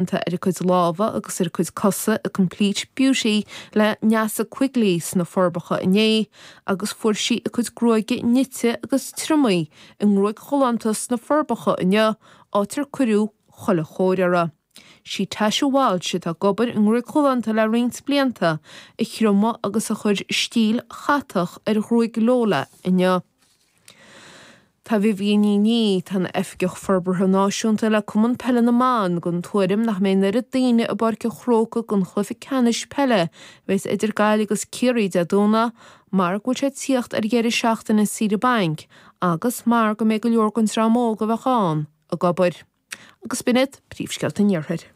déanta ar a cuid lámha agus ar a cuid cosa i Complete Beauty le Neasa Quigley sna Forbacha inné agus fuair sí a cuid gruaige nite agus triomaithe i ngruaig-ghalánta sna Forbacha inniu áit ar cuireadh chuile chóir uirthi. Sí Tasha Walsh, atá ag obair i nGruaig Ghalánta le roinnt blianta, a thriomaigh agus a chuir stíl chatach ar ghruaig Lola inniu. Tá Vivienne Ní Niaidh, atá ina hOifigeach Forbartha Náisiúnta le Cumann Peile na mBan, den tuairim nach mbeidh an oiread daoine i bPáirc an Chrócaigh don chluiche ceannais peile a bheas idir Gaillimh agus Ciarraí Dé Domhnaigh mar go bhfuil sé ag tíocht ar dheireadh seachtaine saoire bainc agus mar go mbeidh go leor den dream óg a bheadh ann ag obair. agus b'in iad, Príomhscéalta an Iarthair.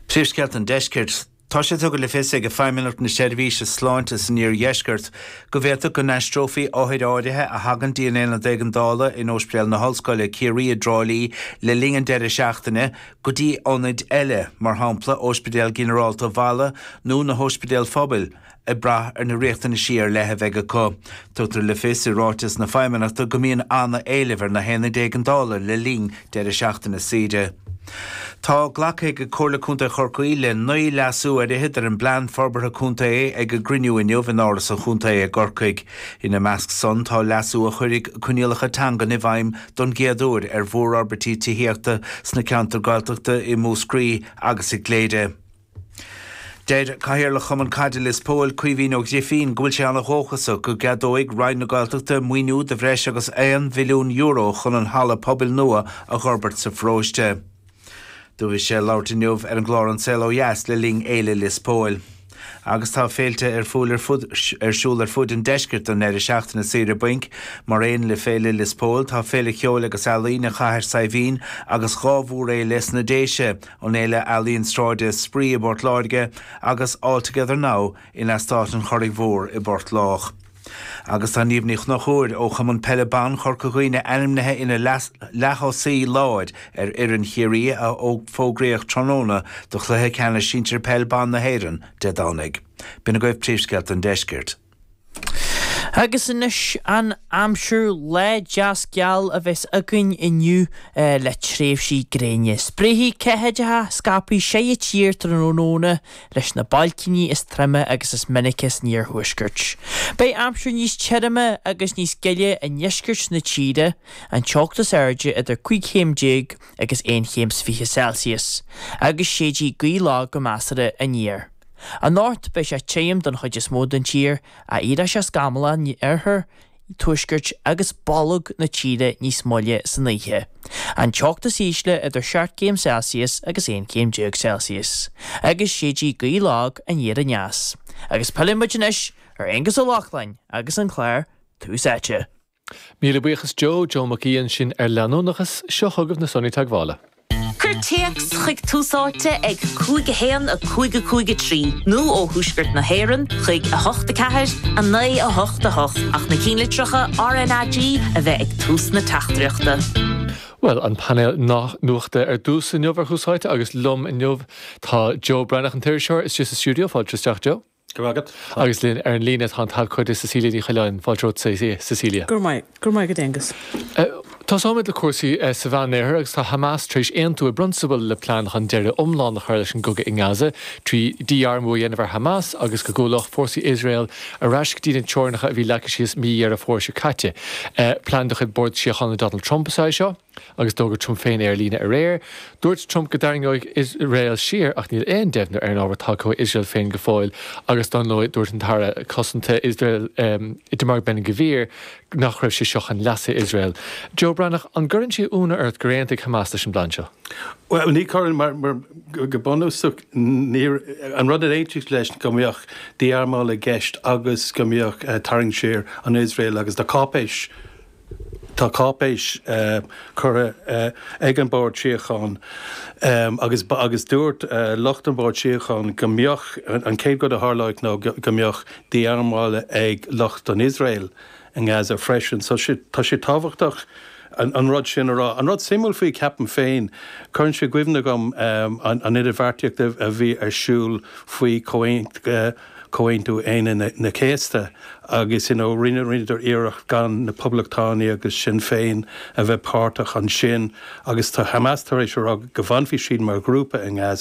Príomhscéalta an Deiscirt. Tá sé tugtha le fios ag Feidhmeannacht na Seirbhíse Sláinte san Iardheisceart go bhféadfadh go n-aistreofaí othair áirithe a thagann go dtí an Aonad Éigeandála in Óispidéal na hOllscoile, Ciarraí i dTrá Lí le linn an deireadh seachtaine go dtí ionaid eile, mar shampla Óispidéal Ginearálta Mhala nó na hÓispidéil Phobail ag brath ar na riachtanaisí ar leith a bheidh acu. Tugtar le fios i ráiteas na Feidhmeannachta go mbíonn an-éileamh ar na haonaid éigeandála le linn deireadh seachtaine saoire. Tá glactha ag Comhairle Contae Chorcaí le naoi leasú ar fhichead ar an bPlean Forbartha Contae ag a gcruinniú inniu in Áras an Chontae i gCorcaigh. Ina measc san tá leasú a chuirfidh coinníollacha teangan i bhfeidhm don gcéad uair ar mhórfhorbairtí tithíochta sna ceantair Gaeltachta i Múscraí agus i gCléire. Deir Cathaoirleach Chumann Caide Lios Póil, Caoimhín Ó Grifín, go bhfuil sé ana dhóchasach go gceadóidh Roinn na Gaeltachta maoiniú de bhreis agus €1 mhilliún chun an halla pobail nua a dh'fhorbairt sa pharóiste. Do bhí sé ag labhairt inniu ar an gclár An Saol Ó Dheas le linn Fhéile Lios Póil. Agus tá féilte ar fúil ar siúl ar fuaid an deiscirt don ndeireadh seachtaine saoire bainc. Mar aon le Féile Lios Póil, tá Féile Cheoil agus Ealaíne Chathair Saidhbhín agus dhá mhórfhéile sna Déise, an Fhéile Ealaíon Sráide Spraoi i bPort Láirge agus All Together Now in Eastát an Churraigh Mhór i bPort Lách. Agus tá Niamh Ní Chnochúir ó Chumann Peile Ban Chorca Dhuibhne ainmnithe ina leathchúlaí láir ar fhoireann Chiarraí a fógraíodh tráthnóna do Chluiche Ceannais Sinsir Peil Ban na hÉireann Dé Domhnaigh. B'in agaibh príomhscéalta an deiscirt. Agus anois an aimsir, lá deas geal a bheas againn inniu le tréimhsí gréine. Spréifidh ceathaideacha scaipthe ón taobh thiar tráthnóna leis na bailcíní is troime agus is minice san iarthuaisceart. Beidh aimsir níos tirime agus níos gile i ndeisceart na tíre, an teocht is airde idir cúig chéim déag agus aon chéim 's fiche Celsius, agus séidfidh gaoth lag go measartha aniar. Anocht, beidh sé tirim don chuid is mó den tír, ach éireoidh sé scamallach in oirthear, tuaiscirt agus bolg na tíre níos moille san oíche. An teocht is ísle idir seacht gcéim Celsius agus aon chéim déag Celsius, agus séidfidh gaoth lag aniar aneas. Agus pillfimid anois ar Aonghus Ó Lochlainn agus an clár Tús Áite. Míle buíochas Joe, Joe Mac Aoidh ansin ar leanúnachas, seo chugaibh na sonraí teagmhála. Cuir téacs chuig Tús Áite ag 5 1 5 5 3 nó ó Thuaisceart na hÉireann chuig 8 4 9 8 8 ach na cinnlitreacha RNAG a bheith ag tús na teachtaireachta. Bhuel, an painéal nuachta ar dtús inniu ar Thús Áite agus liom inniu tá Joe Breathnach, an t-iriseoir, istigh sa stiúideo. Fáilte isteach, Joe. Go raibh maith agat. Agus linn ar an líne tá an t-abhcóide Cecilia Ní Choileáin. Fáilte romhat, Cecilia. Go raibh maith agat, Aonghus. Tosóimid le cúrsaí sa Mheánoirthear agus tá Hamas tar éis aontú i bprionsabal le plean chun deireadh iomlán a chur leis an gcogadh i nGaza trí dhí-armú a dhéanamh ar Hamas agus go gcúlódh fórsaí Iosrael ar ais go dtí na teorainneacha a bhí leagtha síos mí Dheireadh Fómhair seo caite. Plean de chuid Bhord Síochána Donald Trump is ea é seo. Agus d'fhógair Trump féin é ar líne aréir. Dúirt Trump go dtarraingeodh Iosrael siar ach níl aon deimhniú ar an ábhar tagtha ó Iosrael féin go fóill agus dar ndóigh dúirt an tAire Cosanta Iosraelach Itamar Ben-Gvir nach raibh sé seo chun leasa Iosrael. Joe Breathnach, an gcuireann sé ionadh ort gur aontaigh Hamas leis an bplean seo? Bhuel, ní chuireann mar go bunúsach ní hé an rud ar aontaíodh leis go mbeadh dí-armáil i gceist agus go mbeadh tarraingt siar ón Iosrael agus na cáipéis Tá cáipéis curtha ag an Bord Síochána agus dúirt lucht an Bhoird Síochána go mbeadh an chéad rud a tharlódh ná go mbeadh dí-armáil ag lucht an Iosrael i nGaza freisin. So tá sé tábhachtach an rud sin a rá. An rud suimiúil faoi ceapaim féin, cuireann sé i gcuimhne dhom an idirbheartaíocht a bhí ar siúl faoi Chomhaontú. Comhaontú Aoine na Céasta agus you know rinne rinneadar iarracht gan na Poblachtánaithe agus Sinn Féin a bheith páirteach ansin agus tá Hamas tar éis a rá go bhfanfaidh siad mar ghrúpa i nGaza.